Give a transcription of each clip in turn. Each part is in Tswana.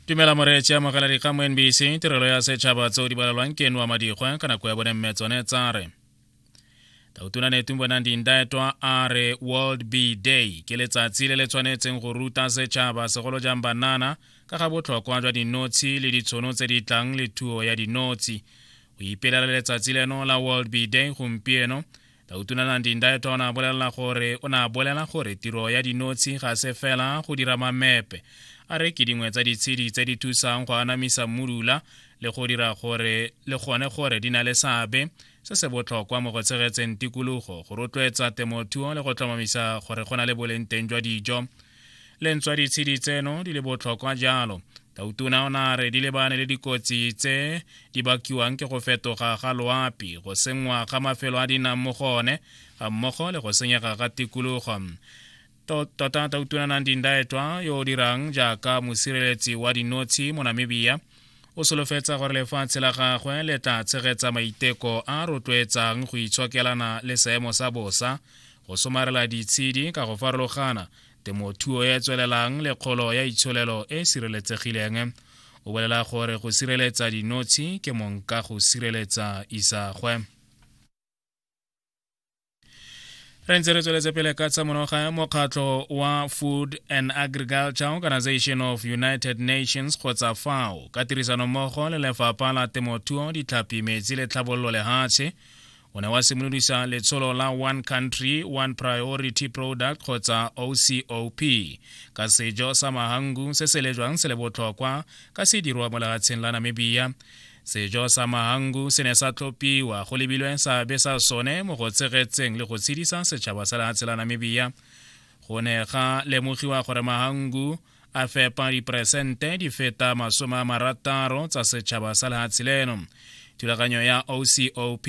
tumela moreetše amogela dikgang mo nbc tirelo ya setšhaba tseo di balelwang ke noa madikgwa ka nako ya bone mme tsone tsa re tautona netung bonang dindaetwa a re world b day ke letsatsi le le tshwanetseng go ruta setšhaba segolo jang banana ka ga botlhokwa jwa dinotshi le ditshono tse di tlang le thuo ya dinotshi go ipelela letsatsi leno la world b day gompieno Dautunanandi Ndaeton a bolelela gore o ne a bolela gore tiro ya dinotshi ga se fela go dira mamepe a re ke dingwe tsa ditshedi tse di thusang go anamisa mmudula le go dira gore le gone gore di na le seabe se se botlhokwa mo go tshegetseng tikologo go rotloetsa temothuo le go tlhomamisa gore go na le boleng teng jwa dijo le ntswa ditshedi tseno di le botlhokwa jalo tautona o ne a re di lebane le dikotsi tse di bakiwang ke go fetoga ga loapi go sengwa ga mafelo a di nang mo go one ga mmogo le go senyega ga tikologo tota tautona nang dindaetwa yo o dirang jaaka mosireletsi wa dinotshi mo namibia o solofetsa gore lefatshe la gagwe le tla tshegetsa maiteko a rotloetsang go itshokelana le seemo sa bosa go somarela ditshedi ka go farologana temothuo e tswelelang le kgolo ya itsholelo e e sireletsegileng o bolela gore go sireletsa dinotshi ke monka go sireletsa isagwe re ntse re tsweletse pele ka tsa monoga mokgatlho wa food and agriculture organization of united nations kgotsa fao ka tirisanommogo le lefapha la temothuo ditlhapi metsi le tlhabololo lehatshe o ne wa simolodisa letsholo la one country one priority product kgotsa ocop ka sejo sa mahangu se se lejwang se le botlhokwa ka se dirwa mo lehatsheng la namibia sejo sa mahangu se ne sa tlhopiwa go lebilwe seabe sa sone mo go tshegetseng le go tshedisa setšhaba sa lehatshe la namibia go ne ga lemogiwa gore mahangu a fepa diperesente di feta masome a marataro tsa setšhaba sa lehatshe leno thulaganyo ya ocop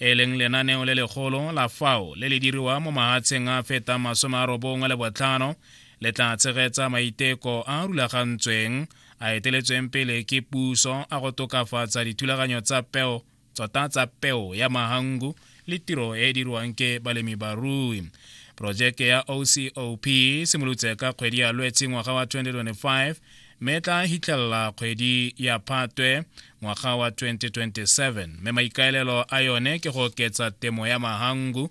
e leng lenaneo le legolo la fao le le diriwa mo mahatsheng a fetang masome a robongwe le botlhano le tla tshegetsa maiteko a rulagantsweng a eteletsweng pele ke puso a go tokafatsa dithulaganyo tsa peo tsota tsa peo ya mahangu le tiro e e dirwang ke balemi barui porojeke ya ocop e simolotse ka kgwedi ya lwetse ngwaga wa 2025 mme e tla hitlhelela kgwedi ya phatwe ngwaga wa 2027 mme maikaelelo a yone ke go oketsa temo ya mahangu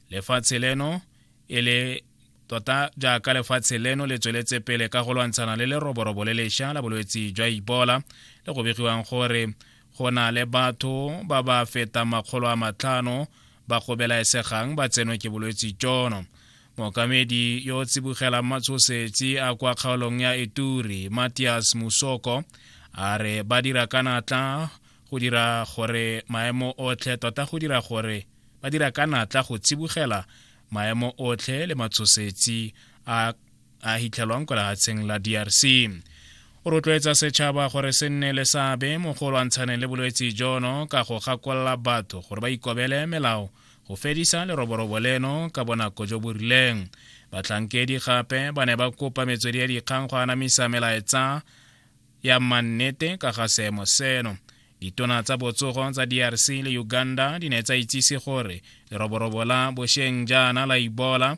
lefatshe leno e le tota jaaka lefatshe leno le tsweletse pele ka go lwantshana le leroborobo le lesha la bolwetse jwa ibola le go begiwang gore go na le batho ba ba fetang makgolo a matlhano ba go belaesegang ba tsenwe ke bolwetse jono mookamedi yo o tsibogelang matshosetsi a kwa kgaolong ya eturi matias musoko a re ba dira ka natla go dira gore maemo otlhe tota go dira gore ba dira ka natla go tsibogela maemo otlhe le matshosetsi a a hitlhelwang kwa lehatsheng la drc o rotloetsa setšhaba gore se nne le seabe mo go lwantshaneng le bolwetse jono ka go gakolola batho gore ba ikobele melao go fedisa leroborobo leno ka bonako jo bo rileng batlhankedi gape ba ne ba kopa metswedi ya dikgang go anamisa melaetsa ya mannete ka ga seemo seno ditona tsa botsogo tsa drc le uganda di ne tsa itsise gore leroborobo la bosheng jaana la ibola